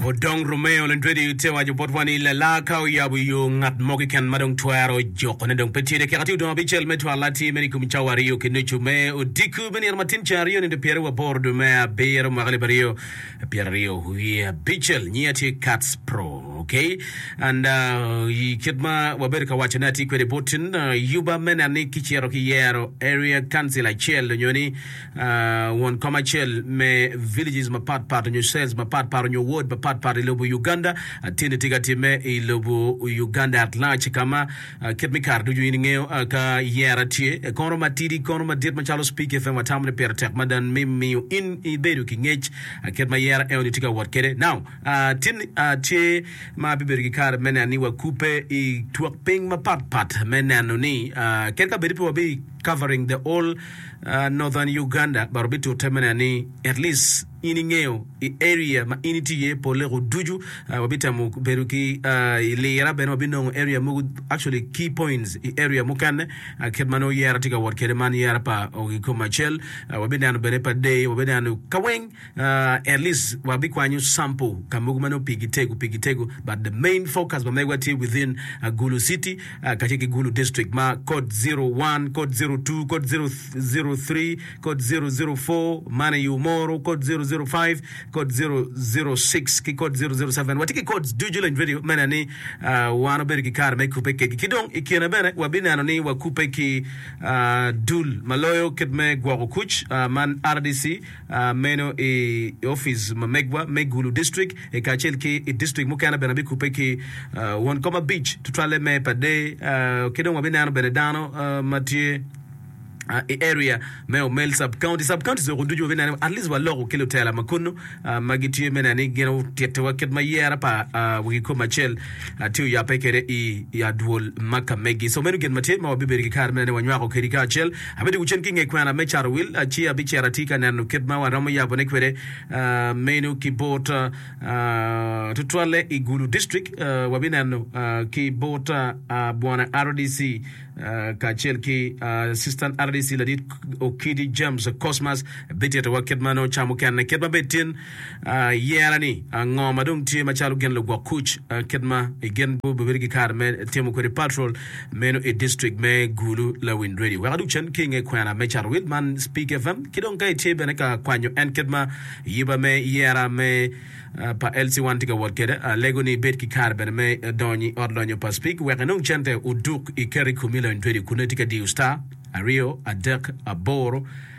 Odong Romeo Landredi te waco botwa ni lala ka oyabo yo ngat mo keken ma dong twero jukone dong pe tye de keka tye odong abicel me twal atir meno i kom cawa aryo ki nucu me odiko me nino matin ceng aryo nino pyere waboro dwe me abiro mwaka alip aryo pyeraryo wiye abicel nyinga tye Kats Pro ok and uh, i kit ma wabedo ka wacone atye kwede bot uh, yuba me neno ni kicito ki yero area council acel onyo ni Won kom acel me villages mapat pat onyo cells mapat pat onyo ward mapat pat i lobo Uganda ateni tye ka time i lobo Uganda at large kama kit me kare ducu in ingeyo ka yera tye kono matidi kono madit macalo Speak FM watamo ni pire tek mada me miyo in ibedo ki ngec kit ma yera eoni tye ka wot kede. Now ateni tye ma bibedo ki kare me neno ni wakube i twok ping mapat pat me neno ni kadi ka bedi pe wabi Covering the whole Northern Uganda but obitute me neno ni at least in ingeyo i area ma in itye iye pole ko ducu. Wabitemo bedo ki i lira bene wabinongo area mogo actually key points i area mukene kit ma nongo yera tye ka wot kwede man yera pa Ogikom Acel. Wabineno bene pa Dei, wabineno kaweng. At least wa bi kwanyo sample ka mogo ma nongo pi gi tego pi gi tego but the main focus pa mego tye within Gulu city kacel ki Gulu district ma code zero one, code zero two, code zero zero three, code zero zero four, man iyo moro, code zero zero five, code zero zero six ki code zero zero seven wa tye ki codes ducu leng tweri me neno ni wan obedo ki kare me kupe kegi ki dong ikine bene wa bi neno ni wa kupe ki dul ma loyo kit me gwoko kuc man rdc Meno i offic ma megwa me Gulu District i kacel ki i district mukene bene abikubbe ki won kom abic tutwalle me per day ki dong wabineno bene dano ma tye i area me Omel Sub County, Sub Counties woko ducu wabineno at least waloko ki lutela ma kunu ma gitye me neno ni gin otittiwa kit ma yera pa wagi kom acel tye oyabbe kede i adwol ma ka megi. So meno gin ma tye ma wabibedo ki kare me neno ni wanywako kedi kacel. Abedo gucen ki i nge kwena me cato wil, ci abicito ati ka neno kit ma waromo yabone kwede meno ki bot, tutwalle i Gulu District. Wabineno ki bot Bwana rdc kacel ki Assistant rdc ladit Okidi James Cosmas bititowa kit ma nongo ca mukene kit ma bed tin. Yer ni ango ma dong tye macalo gin lugwok kuc kit ma gin gubedo ki kare me timo kwede patrol meno i district me Gulu. Lawiny Radio wek adug cen ki i nge kwena me cato wil man Speak FM ki dong ka itye bene ka kwanyo en kit ma yuba me yera me pa LC One tye ka wot kwede, alego ni ibed ki kare bene me donyo i ot lonyo pa Speak wek inong cente oduk ikeri komi Lawiny Radio kun nongo itye ka diyo star aryo adek aboro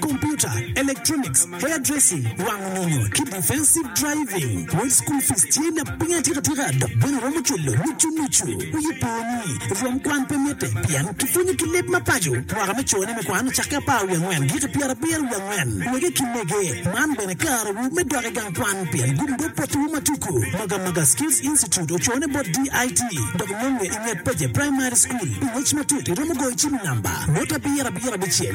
Computer, electronics, hair dressing, wango nyonyo ki defensive driving. Wod school fees tye na piny atika tika dok bene romo cwelo nucu nucu. Wiye po ni rwom kwan pe mitte pien kipwonyo ki leb ma paco. Mwaka me cone me kwan ocakke apar wiye angwen giki pyera abiro wiye angwen. Wege ki mege, man bene kare wu me dok i gang kwan pien gumdo poti wu ma tuku. Maga Maga Skills Institute ocone bot DIT dok nonge i nget Peje Primary School. Pi ngec matut iromo goyo cim i namba, Wot abiro abiro abicel.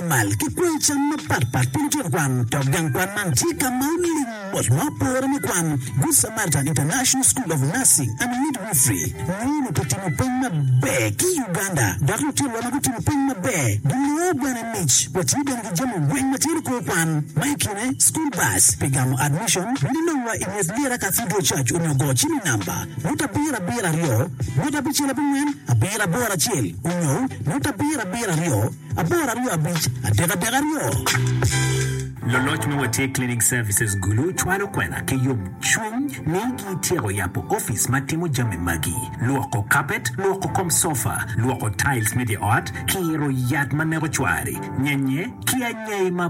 Mal ki kwanyo cam mapat pat piny tut kwan, dok gang kwan man tye ka ma oling mot ma opore me kwan. Good Samaritan International School of Nursing and Midwifery nongo onongo timo peny maber ki i Uganda, dok lutinwa ma gutimo peny maber ginongo bene mic. Watye bene ki jami weng ma tye lukor kwan, ma i kine school bus pi gamo admission, bino nongwa i nget Lira Cathedral Church onyo go cim i namba, ngut abiro abiro aryo, ngut abicel abongwen abiro aboro acel, onyo ngut abiro abiro aryo. Apar aryo abic adek adek aryo. Loloc me Watye Cleaning Services Gulu cwalo kwena ki yomcwiny ni gityeko yabo opic ma timo jami magi, lwoko kapet, lwoko kom sofa, lwoko tiles me dye ot, kiro yat ma neko cwari, nyenye, ki anyai ma.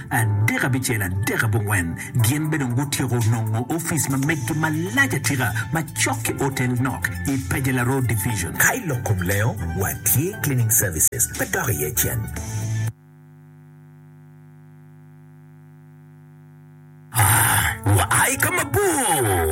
Adek abicel, adek abongwen, gin be dong gutyeko nongo office ma meggi malac atika ma cok ki otel nok i Pajela Road Division. Ka i lok kom lengo, wa tye cleaning services pe dok iye cen. Wa aye ka mabor.